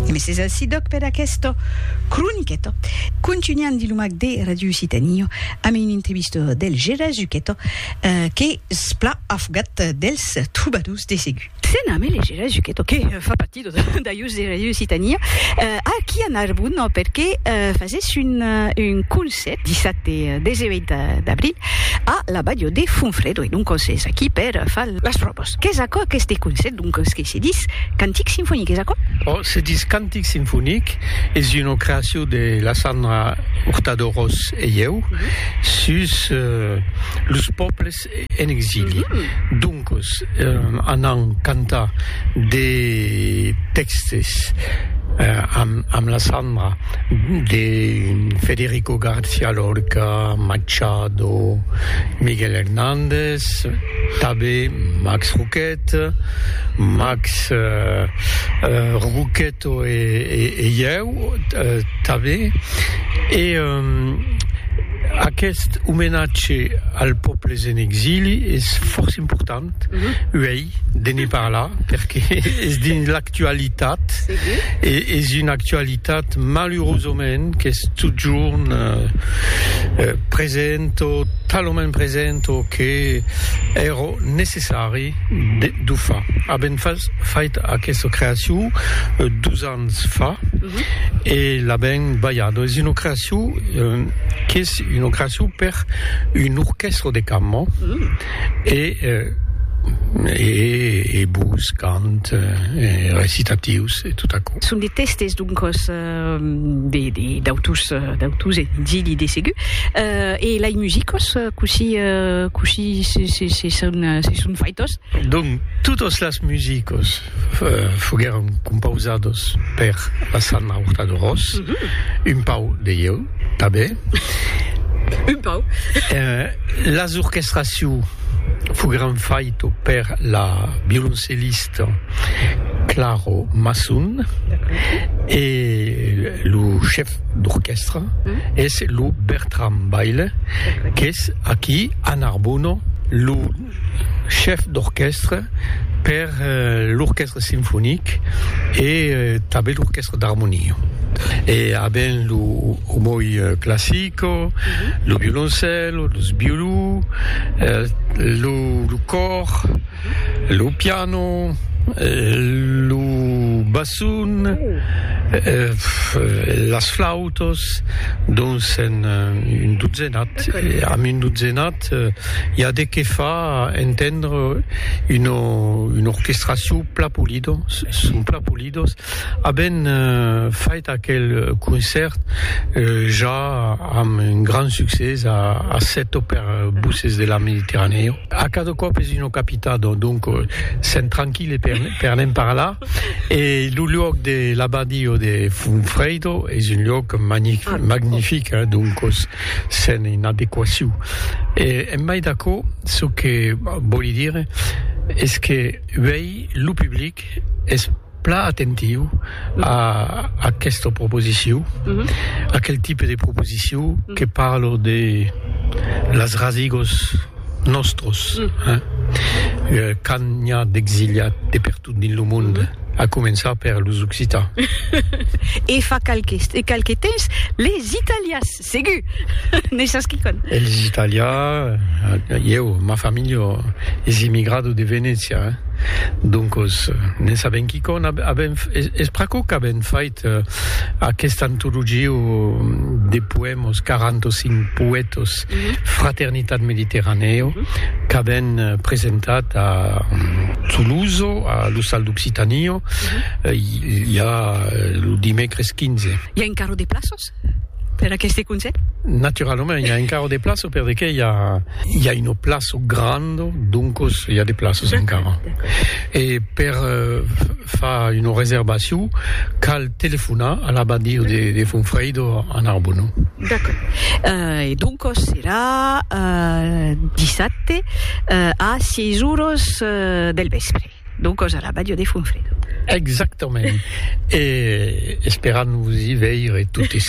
E mes es ací doc per aquesta croniqueta. Contunhan dins lo mac de Ràdio Occitània amb una entrevista del Gera Zucheta qu'es plan afogat dels trobadors de segur. Se name le Gera Zucheta que fa partir de d'ajos de Ràdio Occitània aquí a Narbon perque fasés un un concèrt dissabte e 18 d'abril a la balha de Fonfrèdo e doncas es aquí per far las pròvas. Qu'es aquò aqueste concèpt, doncas, que se dis cantic sinfonic, es aquò? Ò, se dis cantic sinfonic, es una creacion de la Sandra Hurtado Ros e ieu sus los pòbles en exili. Doncas, anam cantar de tèxtes amb la Sandra de Federico Garcia Lorca, Machado, Miguel Hernández, Max, Tabé, Max Roquette, Max Roquetto e ieu, Tabé, e aqueste omenatge al pòbles en exili es fòrça important uèi, de ne parlar perque es dins l'actualitat e es una actualitat malurosament qu'es totjorn present o talament present o que èra necessari d'o far. Avèm fait aquesta creacion dos ans fa e l'avèm balhada. Es una creacion qu'es una creacion per un orquèstra de cambra. E e bus, cant, e recitatius, e tot aquò. Son de tèstes, doncas, de d'autus d'autus e d'ilhi de segur. E lei musicos, cossí cossí se se son faitos? Donc, totas las musicos. foguèron compausados per la Sanna Hurtado-Ros, un pauc de ieu tanben, un pauc, las orquestraciu foguèron faito per la violoncellista Claro Masson e lo chef d'orquèstra es lo Bertram Baile qu'es aquí a Narbona lo chèf d'orquèstra per l'orquèstra sinfonic e tanben l'orquèstra d'armonia e aven lo omoi classico lo violoncèlo los violó lo còr lo piano lo basson las flautas dons en un dotzenat amb un dotzenat Cat, i a de qué fa entendre una orquestracion plan polida, son plan polida, aben fait aquel concèrt ja amb un grand succès a Seto per Voces de la Mediterranèa. A cada còp es una capitada, donc sèm tranquille per ne'n parlar, e lo luòc de l'Abadio de Funfredo es un luòc magnific, donc. Sen inadequaciu. E en mai d'aquò, çò que vòli dire es que uèi lo public es plan atentiu a aquesta proposiciu, aquel tipe de proposiciu que parlo de las rasigos nòstros, hein, quand n'i a d'exiliats de pertot dins lo monde. A començar per los occitans. E fa qualques e qualque temps les italias, segur! Ne sas quicòm? E les italias, ieu, ma familha es immigrada de Venècia, doncos ne sabem quicòm. Avèm, es pr'aquò qu'avèm fait. Aquesta antologia de poèmas, 45 poètas, Fraternitat Mediterranèo, qu'avèn presentat a Toulouse, a l'Ostal d'Occitània, i a lo dimècres 15. I a encara de plaças? per aqueste conselh? Naturalament, i a encara de plaço per de que i a, i a una plaço granda, doncos i a de plaços encara. E per uh, far una reservacion, cal telefonar a l'abadia de, de Fonfreido a Narbona. D'accord. Uh, e doncos serà uh, dissabte uh, a 6 horas uh, del vespre. D'o còs a la Bàdia de Fonfredo. Exactament. E esperam vos i veire totes.